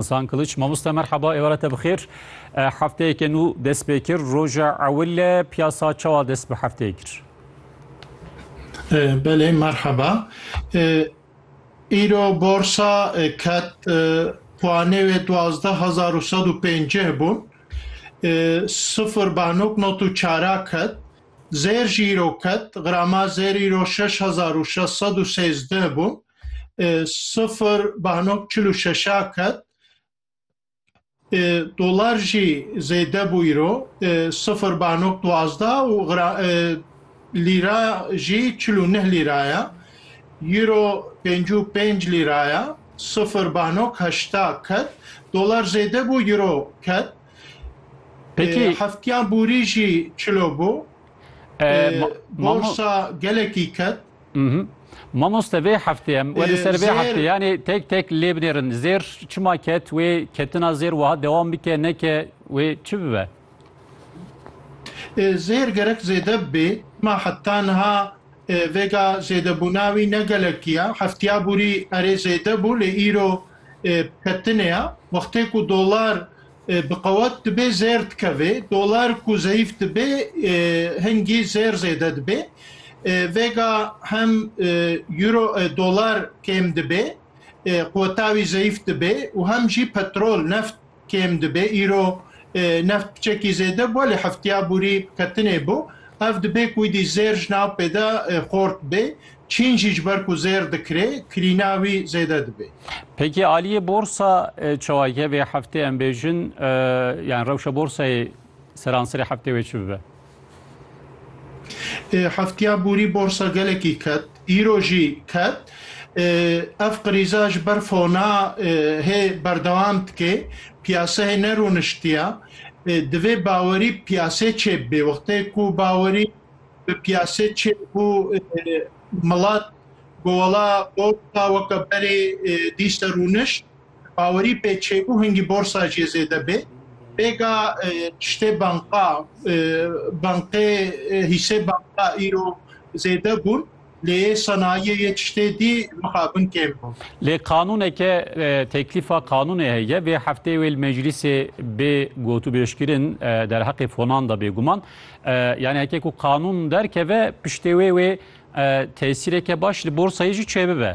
Hasan Kılıç, mamoste merhaba, êware te bixêr. E, hefteyeke nû dest pê kir, roja ewil e, piyasa çawa dest bi hefteyê kir? E, belê, merhaba. E, îro borsa e, ket e, puanê wê duwazdeh hezar û sed û pêncih bûn. E, sifir banok not û çara ket. Zêr jî îro ket, grama zêr îro şeş hezar û şeş sed û sêzdeh bûn. sifir bano çil û şeşa ket dolar jî zêde bû îro sifir bano duazda û lîra jî çil û neh lîra ye îro pênc û pênc lîra ye sifir bano heşta ket dolar zêde bû îro ket Peki heftya bûrî jî çilo bû borsa gelekî ket Mamoste vê heftê em werî ser vê heftê yanê tek tek lê binêrin zêr çima ket wê ketina zêr wiha dewam bike neke wê çi bibe? Zêr gerek zêde bibê ma heta niha vêga zêdebûna wî ne gelekî ya. Heftiya borî erê zêde bû lê îro ketinê ya. Wextê ku dolar Bi qewet dibe zêr dikeve. Dolar ku zeyîf dibe hingî zêr zêde dibe. Vêga hem Euro dolar kêm dibe, qeweta wî zeyîf dibe û hem jî petrol, neft kêm dibe. Îro neft piçekî zêde bû lê hefteya borî ketinê bû. Ev dibe ku îdî zêr ji navpê de xort be. Çîn jî ji ber ku zêr dikirê, kirîna wî zêde dibê. Peki aliyê borsa çawa ye vê heftê em bêjin yani rewşa borsayê seranserê heftê wê çi bibe? Heftiya borî borsa gelekî ket, îro jî ket. Ev qirîza ji ber fona hê berdewam dike, piyaseyê ne rûniştiya. Divê bawerî piyasê çêbibê. Wextê ku bawerî. bi piyasê çê bû milat ku wala borsa weke berê dî ser rûniş bawerî pê çê bû hingî borsa jê zêde bê pêka tiştê banka bankê hîsê banka îro zêde bûn. Lê sanayiyê yê tiştê dî mixabin kêm bû. Lê qanûneke teklîfa qanûnê heye vê hefteyê wê li meclîsê bê gotûbêjkirin derheqê fonan de bêguman. Yanî heke ku qanûn derkeve piştê wê wê tesîreke baş li borsayê jî çêbibe.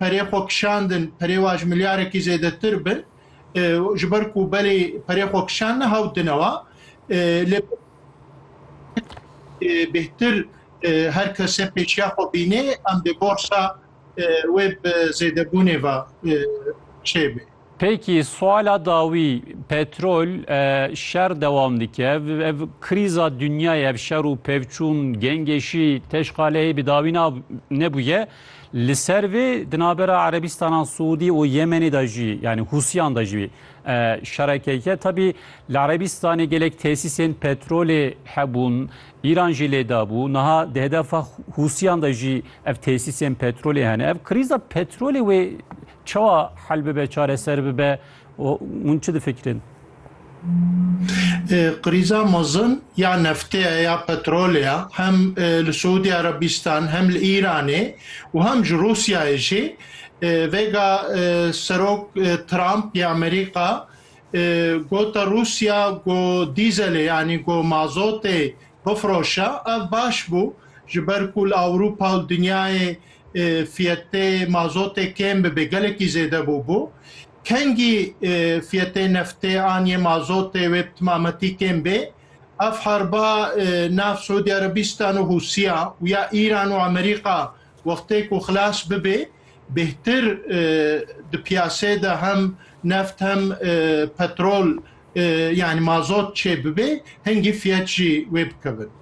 perê xwe kişandin perê wan ji milyarekî zêdetir bin ji ber ku belê perê xwe kişandin hewt dinewa lê bêhtir her kese pêşiya xwe bînê em dê borsa wê bi zêdebûnê ve çêbê. Peki suala dawî petrol şer dewam dike ev krîza dinyayê ev şer û pevçûn gengêşî teşqaleyê bi dawî na nebûye. Li ser vê di navbera Erebîstana Siûdî û Yemenê de jî yanî Hûsiyan de jî şerekeke tabî li Erebîstanê gelek tesîsên petrolê hebûn. Îran jî lê dabû. Niha di hedefa Hûsiyan de jî ev tesîsên petrolê hene. Ev krîza petrolê wê Çawa hel bibe, çareser bibe û hûn çi difikirin? Krîza mezin ya neftê ye ya petrolê ye hem li Siûdî Erebîstan hem li Îranê û hem ji Rûsyayê jî vêga Serok Trump ya Amerîka got Rûsya ku dîzelê yanî ku mazotê bifiroşe ev baş bû ji ber ku li Ewropa û dinyayê fiyetê mazotê kêm bibê gelekî zêde bûbû. Kengî fiyetê neftê an yê mazotê wê bi timametî kêm bê. Ev harba nav Siûdî Erebîstan û Hûsîya û ya Îran û Amerîka wextê ku xilas bibê bêhtir di piyasê de hem neft hem petrol yanî mazot çêbibê hingî fiyet jî wê bikevin.